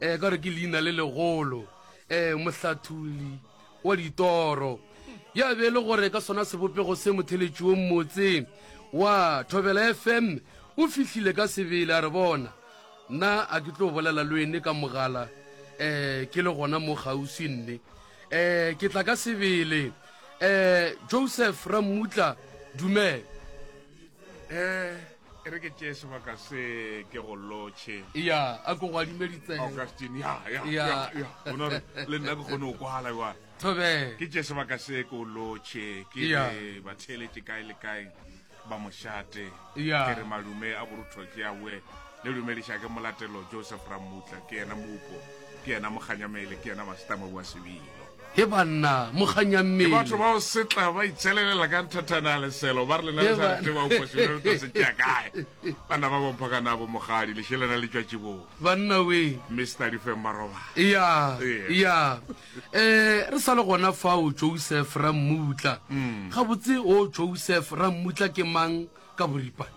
um ka gore ke leina le legolo um mohlathuli wa ditoro ya be e le gore ka sona sebopego se motheletšiong motse wa thobela fm o fihlile ka sebele a re bona nna a ke tlo bolela le ene ka mogala um ke le gona mo kgauswi nne um ke tla ka sebele um joseph rammutla dumela um e re ke tšee sebaka se ke go lotšhe ya a ko go adime ditsebe augustine ya ya Ya. ya ya bona gore le nna ke kgone go kwala wa thobela ke tšee sebaka se ke o lotšhe ke Ya. re ba theeletše kae le kae ba mošate Ya. ke re malume a borutho ke awe le dumediša ke molatelo joseph ramutla ke yena mopo ke yena mokganyamele ke yena masitama wa sebilo He banna, mo kganya mmele. Ke batho bao setla ba itšelelela ka nthathana ya leselo, ba re lena le sa re tseba o kwasile re tlo se tšea kae. Banna ba bompha ka nabo mogadi, lešelana le tšwa tšibong. Banna we. Mister Difeng ba robala. Eya, eya. Eh, re sa le gona fao Joseph Rammutla. Gabotse o Joseph Rammutla ke mang ka boripana?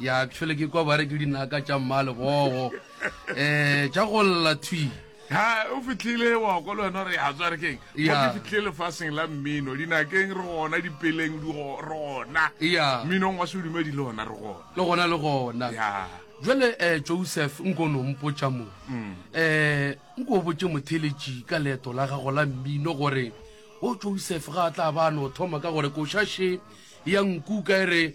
ya tšhwele ke kwa bare ke dinaka tša mmalegogo um tša go lla thwi ha o fitlhile wa ko le wena re ya tswa re keng mo ke fitlhile lefaseng la mmino dinakeng re gona dipeleng re gona mminong wa sedumedi le gona re gona le gona le gona jale um eh, joseph nko no mpotsa mo um nko o botse motheletši ka leeto la gago la mmino gore o joseph ga a tla ba no thoma ka gore košashe ya nkuka e re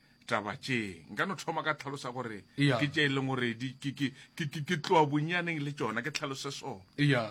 taba tše nka no thoma ka tlhalosa gore ke tše e leng gore ke tloa bonyaneng le tsona ke tlhalose so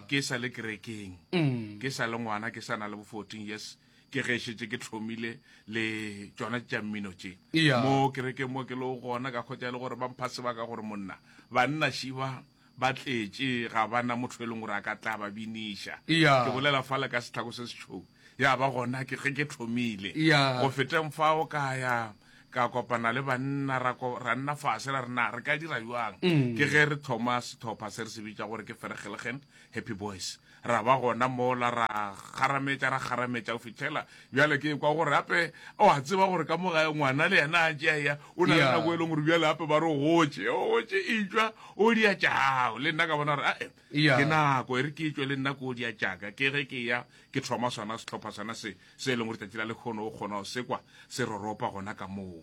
ke sa le kerekeng mm. ke sa le ngwana ke sa na le bo fourteen years ke ge šetse ke tlhomile le tsona tša mmino tše mo kerekeng mo ke le gona ka kgotsa e le gore ba mpha sebaka gore monna banna šiba Ba tletše, ga ba na motho e leng gore a ka tla ba biniša. Eya. Ke bolela fale ka setlhako se setšhou. Ya ba gona ke ge ke thomile. Eya. Go feteng fao ka ya ka kopana le banna ra ko ra nna fase ra re na re ka dira bjang. Ke ge re thoma setlhopha se re se bitša gore ke Vergelegen Happy Boys. Ra ba gona mola, ra kgarametša, ra kgarametša go fihlela bjale ke kwa gore gape o a tseba gore ka mo gae ngwana le yena a tšea ya o na le nako e leng gore bjale gape ba re o gotše o gotše etšwa o dia tša gago le nna ka bona gore ae ke nako e re ke etšwe le nna ko o dia tšaka ke ge ke ya ke thoma sona setlhopha sona se se e leng gore tsatsi la lekgono o kgona go sekwa se roropa gona ka moo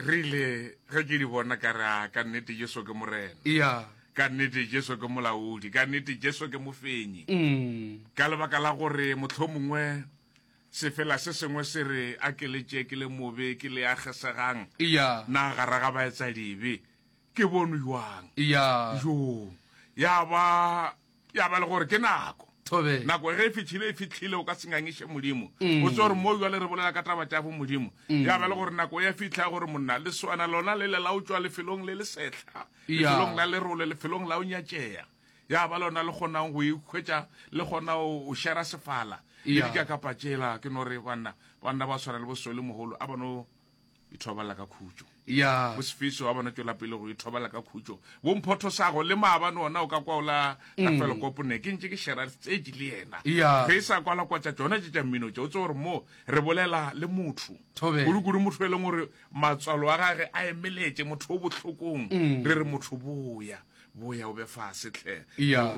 Re ile ge ke di bona ka re, A, ka nnete Jesu ke Morena. Eya. Ka nnete Jesu ke Molaodi. Ka nnete Jesu ke Mofenyi. Ka lebaka la gore mohlomongwe sefela se sengwe se re akeletše ke le mobe, ke le a kgesegang, Eya. na gara ga baetsadibe ke bonw jwang? Eya. Yoo. Ya ba ya ba le gore ke nako Tobe. nako ge e fitlhile e fitlhile o ka se ngangiše modimo Mm. o tse gore mo jale re bolela ka taba tša bo modimo Mm. ya ba le gore nako ya fitlha gore monna le swana lona le le la o tšwa lefelong le le setlha Ya. lefelong la lerole lefelong la o nyatšea ya ba lona le kgonang go ikhwetša le kgona o o šera sefala le Ya. dika kapa tšela ke no re banna banna ba tshwana le bosole mogolo a bano e thobala ka khutšo ya bosefeso wa bona tšwela pele go e thobala ka khutšo bomphotho sago le maabane ona o ka kwa ola ka mm. felo kopone ke ntse ke shera tsedi le yena ge e sa kwala kwa tša tsona tše tša mmino tše o tse gore moo re bolela le motho kudu-kudu motho e leng gore matswalo a gage a emeletse motho o bohlokong mm. re re motho boya boya o be fa setlhe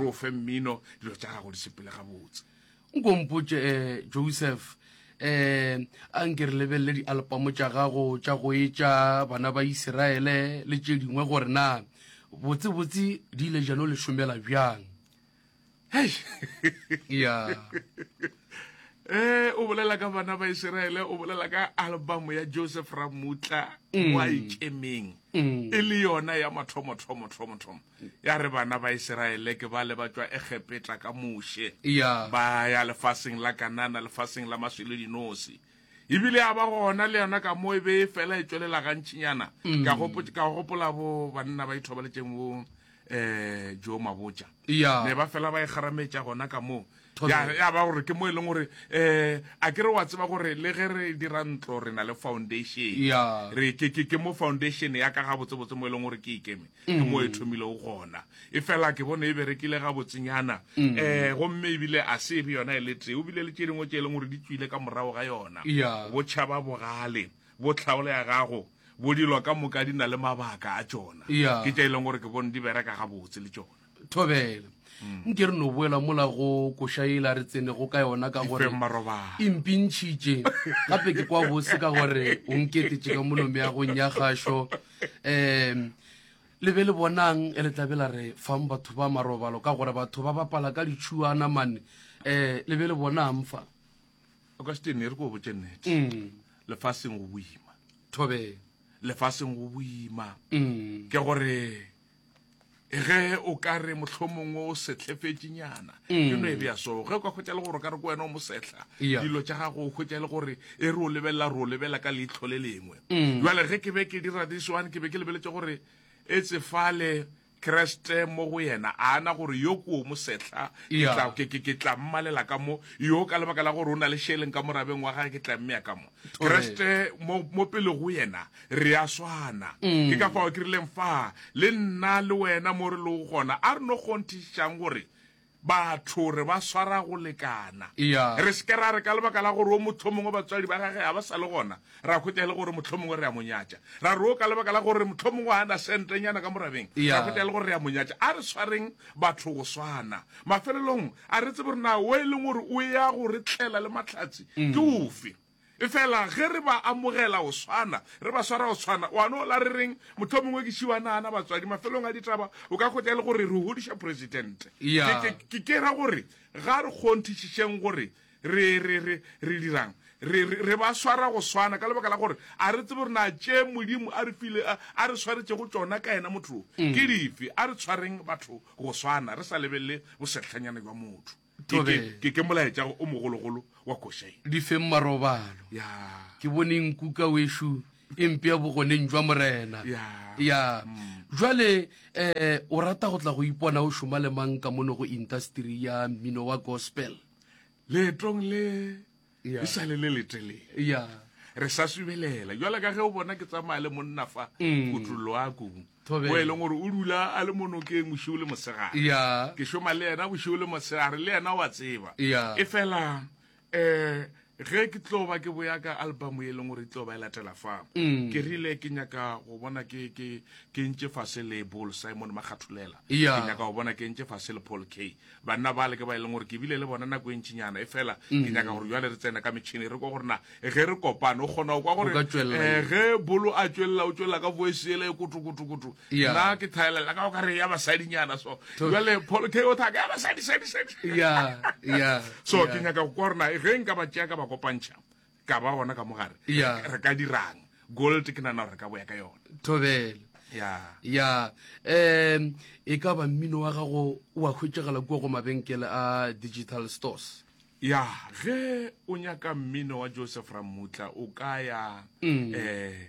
o fe mmino dilo tša gago di sepele gabotse nko mpotše um eh, joseph um a nke re lebelele dialpamo tša gago tša go etša bana ba iseraele le tše dingwe gore na botsebotse di ile jano le šomela bjang hei ya um o bolela ka bana ba iseraele o bolela ka albamo ya joseph ramutla mm. wa ikemeng mm. e le yona ya mathomothomothomothoma ya re bana ba iseraele ke ba le ba tšwa egepeta ka moshe ya ba ya lefaseng la kanana lefaseng la maswele dinosi ebile ya ba gona le yona ka mo e be e fela e tswelela gantšhinyana mm. ka go gopola bo banna ba ithobaletšeng bo um eh, jo mabotša ya ne ba fela ba e kgarametša gona ka moo ya ba gore ke mo e leng gore um a ke re wa tseba gore le ge re dira ntlo re na le foundation re ke mo foundation ya ka ga botsebotse mo e leng gore ke ikeme ke mo e thomilego gona e fela ke bone e berekile ga botsenyana um gomme ebile a se e be yona e le tee o bile le tše dingwe tše e leng gore di tswile ka morago ga yona botšhaba bogale bo tlhaolo ya gago bo dilo ka moka di na le mabaka a tšona ke tša e leng gore ke bone di bereka gabotse le tšona thobela nke re no boela mola go koša ela re tsenego ka yona ka gore e mpintšhitše gape ke kwa bose ka gore o nketetše ka molomeagong ya gašo um le be le bonang e le tlabe la re fang batho ba marobalo ka gore batho ba bapala ka ditšhuana mane um le be le bonang fa o ka setene re ko botse nnete mm. lefaseng go boima thobe lefaseng go boima mm. ke gore ge o ka re mohlomongwe o setlhefetšinyana mm. ke no e bea so ge o ka hwetša le gore ka re ko wena o mosehla dilo tša gago o hwetša le gore e re o lebelela re o lebelela ka leitlho le lengwe mm. jale ge ke be ke dira this one ke be ke lebeletse gore e tsefale kreste mo go yena a ana gore yo kuo mosehla ke tla mmalela ka mo yo ka lebaka la gore o na le sheleng ka morabeng wa gage ke tla mmeya ka mo kreste mo, mo pele go yena re a swana mm. ke ka fao ke rileng fa le nna le wena mo re lego gona a re no kgonthišang gore batho re ba swara go lekana yeah. re seke ra re ka lebaka la gore o motlho mongwe batswadi ba gage ga ba sa le gona ra khwetsa e le gore motlho mongwe re a monyatša ra re o ka lebaka la gore motlho mongwe a na sentenyana ka morabeng yeah. ra khwetsa e le gore re a monyatša a re swareng batho go swana Mafelelong, a re tsebe gore na wo e leng gore o ya go re tlela le mahlatse ke ofe. Efela ge re ba amogela go swana, re ba swara go swana, wa no la re reng? Mohlomongwe ke šiwa naana, batswadi, mafelelong a ditaba o ka hwetša e le gore re hodiša Presidente. Ke, ke, ke, ke ra gore ga re kgonthišišeng gore Re, re, re, re dirang? Re, re, re ba swara go swana, ka lebaka la gore a re tsebe gore na tše Modimo a re file, a, a re swaretšego tšona ka yena motho wo, mm. ke dife. A re tshwareng batho go swana, re sa lebelele bosetlhanyana jwa motho. Ke, ke, ke molaetša o mogologolo wa košae. Di feng marobalo. Ya. Ke bone nkuka wešo e mpea bogoneng jwa Morena. Ya. Ya. Mm. Jwale eh o rata go tla go ipona o šoma le mang ka mono go industry ya mmino wa gospel? leetong le e sale le letelele re sa subelela jwale ka ge o bona ke tsamaya le monna fa mm. kutulloako o e leng gore o dula a le monokeng bošio le mosegare ke šoma le yena bošio le mosegare le yena wa tseba e fela um ge ke tlo ba ke boya ka album e leng gore e tlo ba e latela fa mm. ke rile ke nyaka go bona ke ke ke ntše fase le bol simon makgathulela yeah. ke nyaka go bona ke ntše fase le paul k banna ba le ke ba e leng gore ke bile le bona nako e ntšinyana e fela ke mm. nyaka gore jale re tsena ka metšhini re kwa gore na ge re kopane o kgona go kwa gore eh, ge bolo a tšwelela o tšwelela ka voice ele e kotokotokoto Yeah. nna ke thaelela ka o kare ya basadinyana so To- jale paul k o thaka ya basadi sadi sadi ya ya so ya. ke nyaka go kwa rona ge nka ba tšea ka ba kopantšha ka ba gona ka mogare Yeah. re ka dirang gold ke nana gore re ka boya ka yona thobele ya ya um e ka ba mmino wa gago wa hwetšagala kua go mabenkele a digital stores ya ge o nyaka mmino wa joseph ramutla o ka ya Mm. eh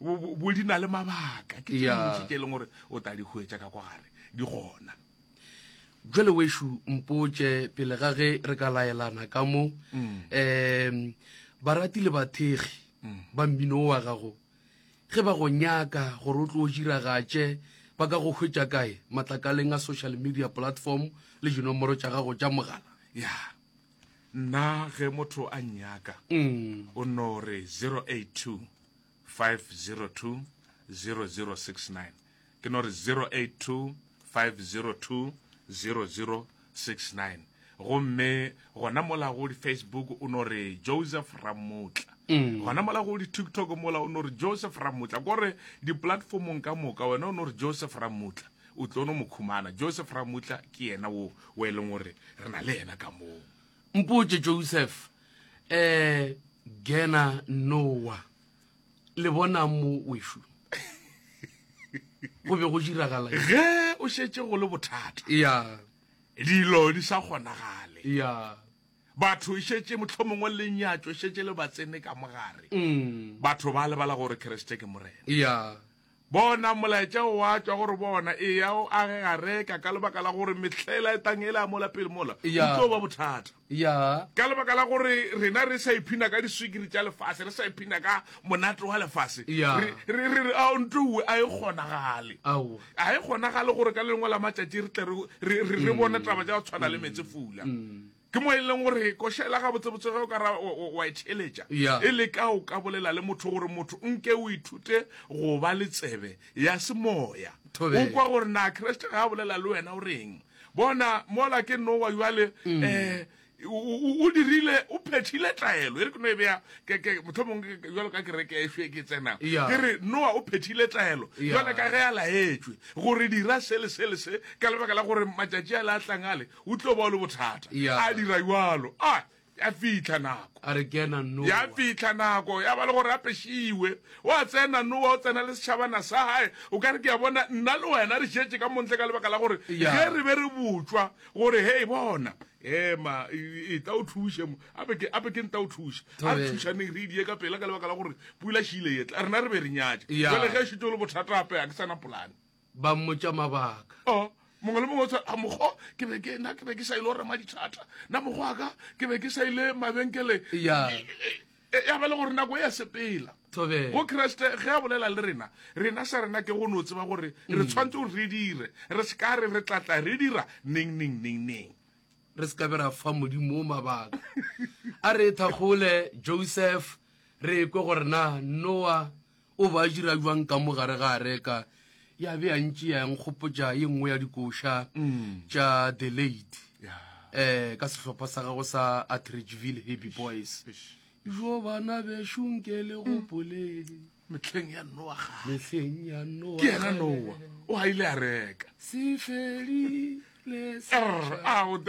bo di na le mabaka ke tše ke e leng gore o ta di hwetša ka kwa gare di gona jale wešo mpotše pele ga ge re ka laelana ka mo um mm. barati le bathegi mm. ba mmino wa gago ge ba go nyaka gore o tlo o diragatše ba ka go hwetša kae matlakaleng a social media platform le dinomoro tša gago tša mogala ya nna ge motho a nyaka mm. o no re 082 5020069 ke no re 0825020069 gomme gona mola go di-facebook o no re joseph ramotla mm. gona mola go di-tiktok mola o no re joseph ramotla kore di-platformong ka moka wena o no re joseph ramotla o tlo no mo khumana joseph ramotla ke yena wo o e leng gore re na le yena ka moo mpotse joseph eh gena nowa le bona mo wešo go be go diragala ge o šetše go le bothata ya dilo di sa kgonagale ya batho e šetše mohlomongwe lenyatšo e šetše le batsene ka mogare mm. batho ba lebala gore keresete ke morena ya Bona, molaetša o a tšwa go re bona, Eya o age gareka, ka lebaka la gore mehlela e tang e la mola pele mola, o tlo ba bothata. Ya. Ka lebaka la gore rena re sa iphina ka diswikiri tša lefase, re sa iphina ka monate wa lefase, re re re a ntuwe a e kgonagale. Ao. A e kgonagale gore ka lengwe la matšatši re tle re re re bone taba tša go tshwana le metse fula. Ke mo e leng gore košela gabotsebotse ge o ka ra wa e theletša e le ka o ka bolela le motho gore motho nke o ithute go ba le tsebe ya semoya o kwa gore na Kriste ga a bolela le wena o reng. Bona mola ke Noa jwale um o dirile o phethile taelo e re ke no e beya motlho mongwe jalo ka kereke e šwe ke tsena ke re noa o phethile taelo jale ka ge a laetswe gore dira se le se le se ka lebaka la gore matšatši a le a tlang ale o tlo ba o le bothata Yeah. a dira jalo a ya fitlha nako a re kena no ya fitlha nako ya ba le gore a pešiwe wa tsena nowa o tsena le setšhabana sa gae o ka re ke ya bona nna le wena re šetše ka montle ka lebaka la gore Ya. ge re be re botšwa gore hei bona ema e- e tla o thuše mo ape ke ape ke nta o thuše a re Ee. thušaneng re idie ka pela ka lebaka la gore pula šile etla rena re be re nyatše Ya. jale ge e šetše o le bothata ape ga ke sana polane ba mmotša mabaka oh, mongwe le mongwe a mokgo ke be ke na ke be ke sa ile go rema dithata na mokgo a ka ke be ke sa ile mabenkele ya e, e, e, ya ba le gore nako e ya sepela go kreste ge a bolela le rena rena sa rena ke go no tseba gore re mm. tshwanetse gore re dire re se ka re re tlatla re dira neng neng neng neng re se ka be ra fa modimo o mabaka a re thakgole joseph re kwe gore na noa O ba dira bjang ka mo gare ga areka ya be ya ntši ya nkgopotša ye nngwe ya dikoša tša the late um ka sehlopha sa gago sa atridgeville happy boys jo bana bešunke le gopolele mehleng ya noaga mehleng ya noa ke ena noa o a ile a reka se fedile se a o tela